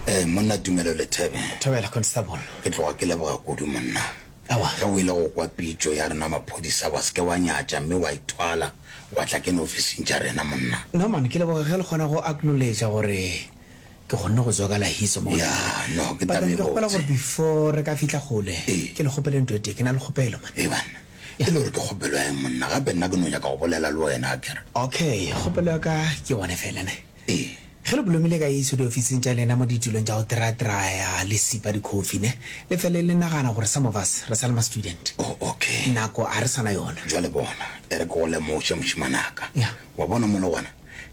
Eh, monna Tumelo Lethebe. Thobela, Constable. Ke tloga ke leboga kudu, monna. Awa. Ge o ile go kwa pitšo ya rena maphodisa, wa seke wa nyatša mme wa ithwala wa tla kene ofising tša rena, monna. No, man, ke leboga ge le kgona go acknowledge gore ke kgonne go tswa ka lahiso mo. Ya, no, ke taba e botse. But ke kgopela gore before re ka fihla kgole, ke le kgopele ntho e tee. Ke na le kgopelo, man. Ee, banna. E le gore ke kgopelo ya eng, monna? Gape nna ke no nyaka go bolela le wena, akere. Okay, kgopelo ya ka ke one fela, ne. Ee, ge le blomile ka Jesu diofising tša lena mo ditulong tša go tiratiraya le sipa dikhofi, ne le fele le nagana gore some of us re sa le ma-student. Oh, okay. Nako ga re sa na yona. Bjale bona, e re ke go lemoše, mošemanaka. Ya. Wa bona mola gona?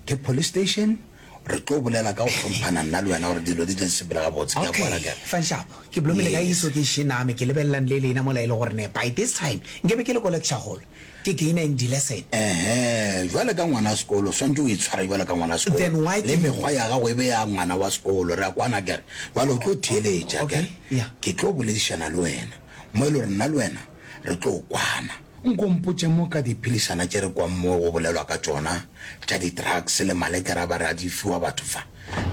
Ke police station. Re tlo bolela ka go hlomphana nna le wena gore dilo di tle di sepele gabotse, ke a Okay, kwala ke re. fan sharp. Ke blomile ka Jesu Yes. ke šename, ke lebelelang le lena mola e le gore ne by this time nke be ke le ko lecture hall. Ke gainer in dilesson. Ehe, jwale ka ngwana sekolo, o swanetše o itshware bjalo ka ngwana sekolo. Then why ke. Le mekgwa ya gago e be ya ngwana wa sekolo. Re a kwana akere? Jwale o tlo theeletša akere? Okay, yeah. Ke tlo boledišana le wena, mo e le gore nna le wena re tlo kwana. Nko mpotše mo ka diphedišana tše re kwang mo go bolelwa ka tšona tša di-drugs le malekere a ba re a di fiwa batho fa.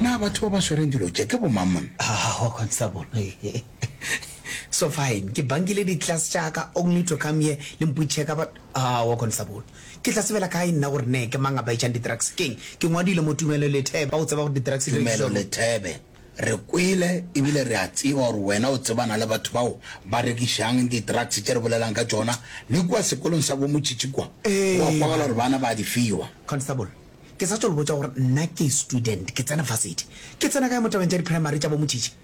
Na batho ba ba swereng dilo tše ke bomang monna? Aowa, Constable. So fine, ke bankile di class tša ka only to come here le mputšheka but aowa Constable, ke tla sebela kae nna gore ne ke mang a baetšang di drugs keng? Ke ngwadile mo Tumelo Letheba o tseba gore di drugs di rekišwa Tumelo mo? Lethebe, re kwele ebile re a tseba gore wena o tsebana le batho bao ba rekišang di drugs tše re bolelang ka tšona le kua sekolong sa bo Motšhitšhi kua, Ee, wa kwagala man. gore bana ba a di fiwa. Constable, ke sa tšo le botša gore nna ke student, ke tsena varsity. Ke tsena kae mo tabeng tša di primary tša bo Motšhitšhi?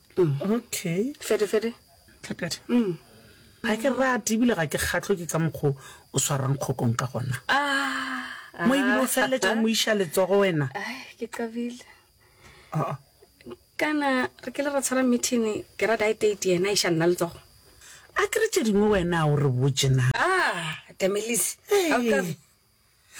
Okay. Fede, Fede. Tlhapjadi. Mm. Ga ke rate ebile ga ke kgatlho ke ka mokgo o swarang kgokong ka gona. Ah. Mo ebile o ah. feleletša mo iša letsogo wena. Ai, ke qabile. Ah. Kana re ke le ra tshwara meeting ke ra die date yena iša nna letsogo. A ke re tše dingwe wena o re botše na. Ah, Damelise. Hey.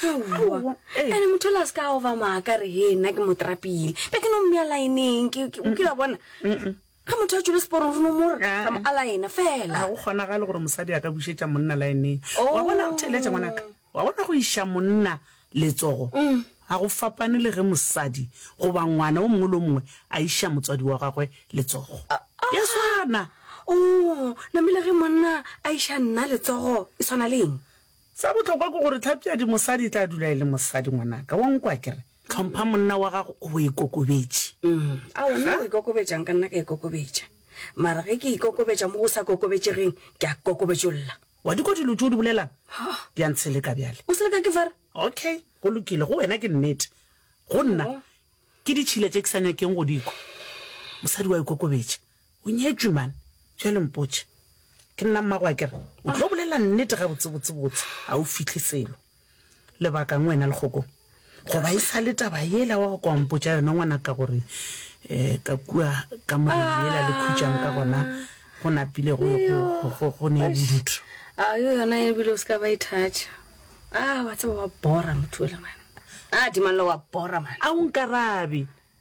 Aowa, eh. ene motho la se ka ova maaka re he nna ke mo trapile be ke no mmea laeneng ke ke- o kila bona ge motho a tšwele seporong re no mo re Ah, ra mo ah. a laena ga fela go kgonagale gore mosadi a ka bušetša monna laeneng Oh. wa bona theletša ngwanaka wa bona go iša monna letsogo Mm. ga go fapane le ge mosadi goba ngwana o mongwe le o mongwe a iša motswadi wa gagwe letsogo Ah, ya swana o namile ge monna a iša nna letsogo e tshwana leng Sa bohlokwa ke gore tlhapi ya dimosadi e tla dula e le mosadi, ngwanaka. Wa nkwa akere? Hlompha monna wa gago o bo ikokobetše. A wena o ikokobetša'ng ka nna ka ikokobetša? Mara ge ke ikokobetša mo go sa kokobetšegeng, ke a kokobetšolla. Wa di kwa dilo tše o di bolelang? Di a ntsheleka bjale. O seleka ke fa re. Ok, go lokile. Go wena ke nnete. Go nna, ke ditšhila tše ke sa nyakeng go di kwa. Mosadi wa ikokobetša. O nyetšwe man. Bjale mpotše. Ke nna mmago a ke re, O tlo bolela nnete gabotsebotsebotse, ga o fihle selo. Lebaka'ng wena le kgokong? Goba e sa le taba yela wa go ka wa mpotša yona ngwanaka gore ka kua ka moriri yela le khutšang ka gona go napile go, go, go, go ne bodutu. A yo yona e bile o se ka ba e thatša. A, wa tseba wa bora motho yola man. A, Dimallo wa bora man. A o nkarabe.